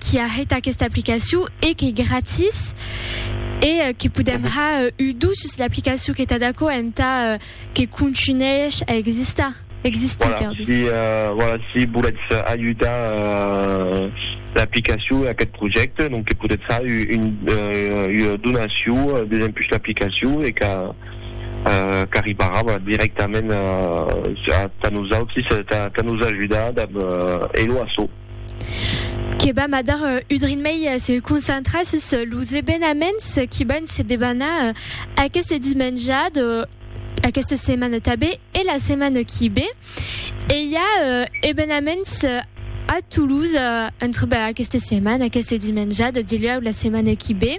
qui a hèt aquesta aplicacion e qu'ei gratis e que podèm ha un dut sus l'aplicacion qu'ei tad aquò entà que contunhèish a existar. Voilà, si voilà si volètz ajudar l'aplicacion e aquest projècte donc que podètz ha un ua donacion desempús l'aplicacion e qu'a qu'arribarà dirèctament tà nosautis tà nos ajudar dab Elo Asso. que vam a dar un drin mei se concentrar sus los evenaments qui van se debanar aqueste dimenjat aquesta setmana tabé e la setmana qui ve. E i a euh, evenaments euh, a Toulouse euh, entre bah, aquesta setmana, aquesta dimenjada, dilhèu la setmana qui ve.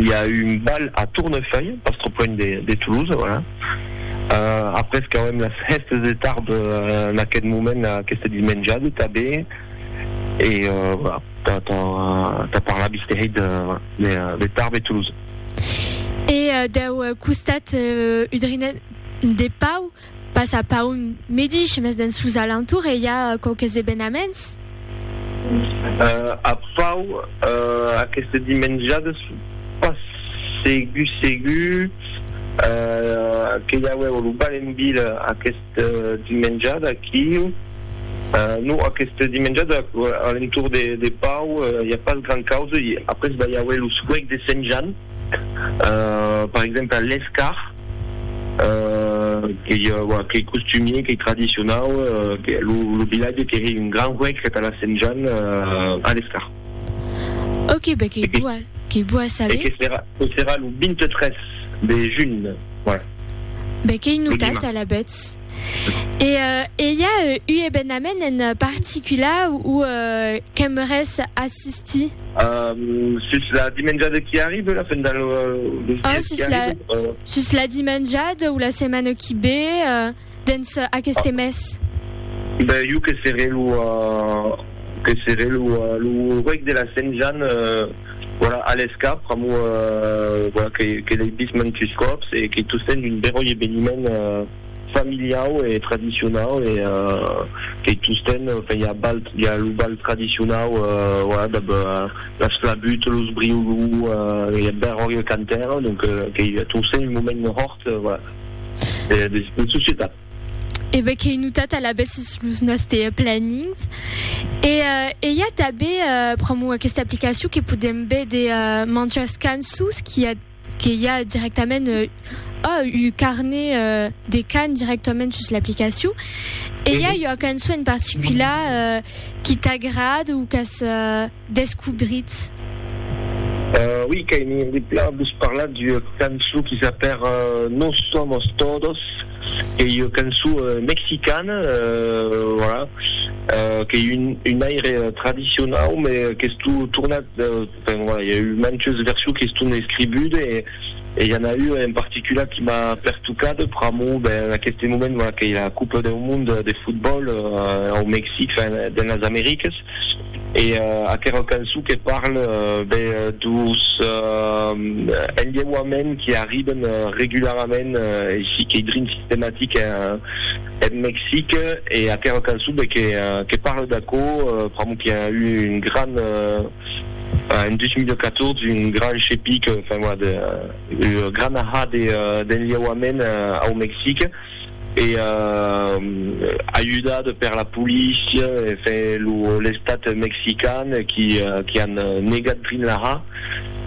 i a eu un bal a Tournefeuille, pas trop loin de Toulouse, voilà. Euh, après qu'auem las hèstes de tarb en aquest moment, aquesta dismenjada tabé, e voilà, ta, ta, ta parla bisterei de, de, de Tarbes e Toulouse. E dau costat udrinenc de Pau, Pas a Paun medish, mes dens sos alentours e i a quauques evenaments. A Pau, aqueste dimenjades pas segur segur que i auèu lo bal en vila aqueste dimenjade aquiu. Non, aqueste dimenjade a l'entorn de Pau i a pas grand causa. Après va i auer lo suec de Sent Jan. per exemple l'escar qu'ei qu'ei costumier qu'ei tradicionau lo vilatge qu'ei un gran huec que tà la sent Jan a l'escar ok be qu'ei boa qu'ei boa saber que serà que serà lo 23 de junh voilà be qu'ei notat alavetz. E e i a u ebenament en particular o qu'aimeres assistir? Sus la dimenjada qui arribe, la fin del sus la sus la dimenjada o la setmana qui be dens aqueste mes? Ben jo que seré lo que seré lo reg de la Sent Jan. Voilà, a l'escap, pr'amor voilà que l'ei vist mantus còps e que tostemps d'un beròi eveniment familiau e tradicionau e que tostemps fèia balt ja lo bal tradicionau voilà dab las flabutes, los briolous, ei eth beròi, eth cantaire, donc qu'ei tostemps un moment hòrt, voilà, de societat. E ben qu'ei notat alabèth sus los nòste plannings. E e i a tanben pr'amor aquesta aplicacion que podem véder manjas cançons qui a que i a directament ò un carnet de can directament sus l'aplicacion. E i a ua cançon en particular qui t'agrad o qu'as descobritz? Ui, qu'ai mir de plan vos parlar d'ua cançon qui s'apèr Nos somos todos, qu'ei ua cançon mexicana, voilà, qu'ei un aire tradicionau, me qu'estó tornat, enfin voilà, i a eu mantes versions que estón escribudes e i a n'a ua en particular qui m'a pertocat pr'amor, ben, en aqueste moment, voilà, qu'ei la Copa deu Monde de Fotbòl au Mexic, enfin, dens las Americas. E aquerò cançon que parle be dos enlheuaments qui arriben regularament e si qu'ei drin sistematic en Mexic e aquerò cançon be que parle d'aquò pr'amor qui a eu un gran en 2014 un gran chepic enfin voilà de gran ahà d'enlheuaments au Mexic. e ajudat per la polícia e fe l'estat mexican qui an negat Greenlaha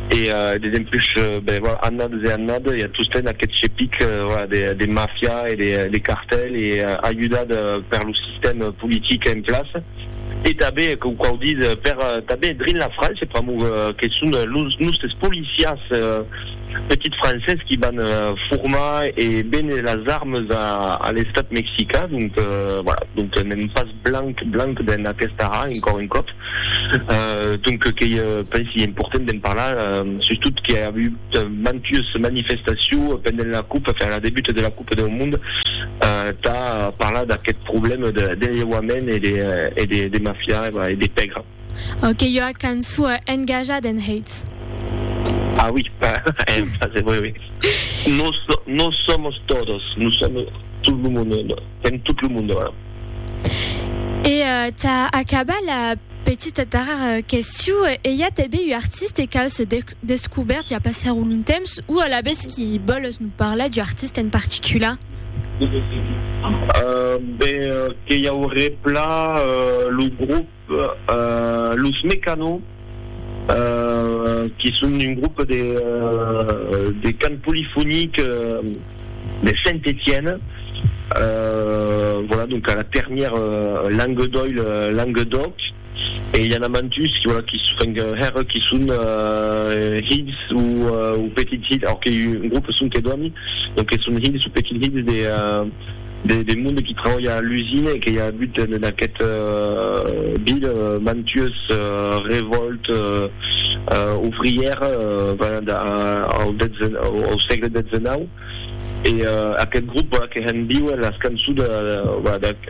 e desempush annades e annades i a tosten aquest chepic de mafia e de cartel e ajudat per lo sistèm politic en plaça e tanben que quau ditz per tanben drin la França pr'amor que son los nostres policias Quatre petits Frances qui van formar e béner las armes a l'estat mexicain, donc voilà, donc n'èm pas blanc blanc dens aquesta ra, encòr un còp, donc qu'ei pensi important d'en parlar, sustot que i a avut mantues manifestaciu pendent la coupe, enfin la debut de la coupe deu monde, tà parlar d'aqueth problème de lheuament e de mafia e de pègra. Au que ua canço engajat en Heitz. Ah oui, en français, oui, oui. Nos, nos somos todos, nous sommes tout le monde, en tout le monde. E uh, ta acaba la petita tarar questiu, e i a tebe u artiste qu'aus descubèrt ja passer un long temps, u alavetz qui boles nos parlar d'u artiste en particular? Uh, ben, que i auré plan uh, lo grup Los Mecano, que son un grop de cant polifonic de Saint-Etienne, voilà, donc a la ternièr Languedoil, Languedoc, e i a na mantus voilà qui enfin hèr qui son hilhs ou petits hilhs, alors que un grop son que dòni, donc que son hilhs ou petits hilhs de de monde qui trabalha a l'usina e que i a agut en aquest vil mantues revòlte ouvrière venent au sègle xix e aquest grop que hèn viuer las cançons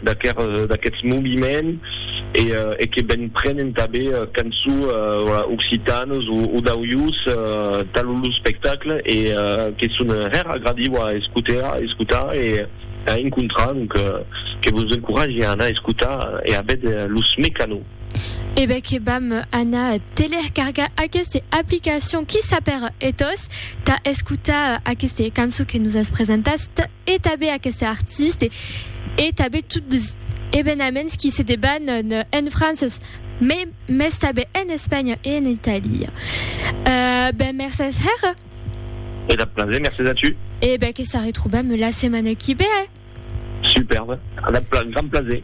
d'aquests moviments e que ben prenen tanben cançó occitanes o d'aujós tan lo spectacle e que son hèr agradiu a escotar e a encontrar donc que vos encoratge a anar escotar e a véder los Mecano. E ben que vam anar telercargar aqueste aplicacion qui s'apèra Ethos tà escotar aqueste cançó que nos as presentat e tanben aqueste artiste e tanben tot evenaments qui se debanan en Franças, mai mès tanben en Espanha e en Italia. Eh ben, mercés hèra. E dab plaser, mercés a tu. E ben, que s'arretrobam la setmana qui ve, eh? Superbe, a dab gran plaser.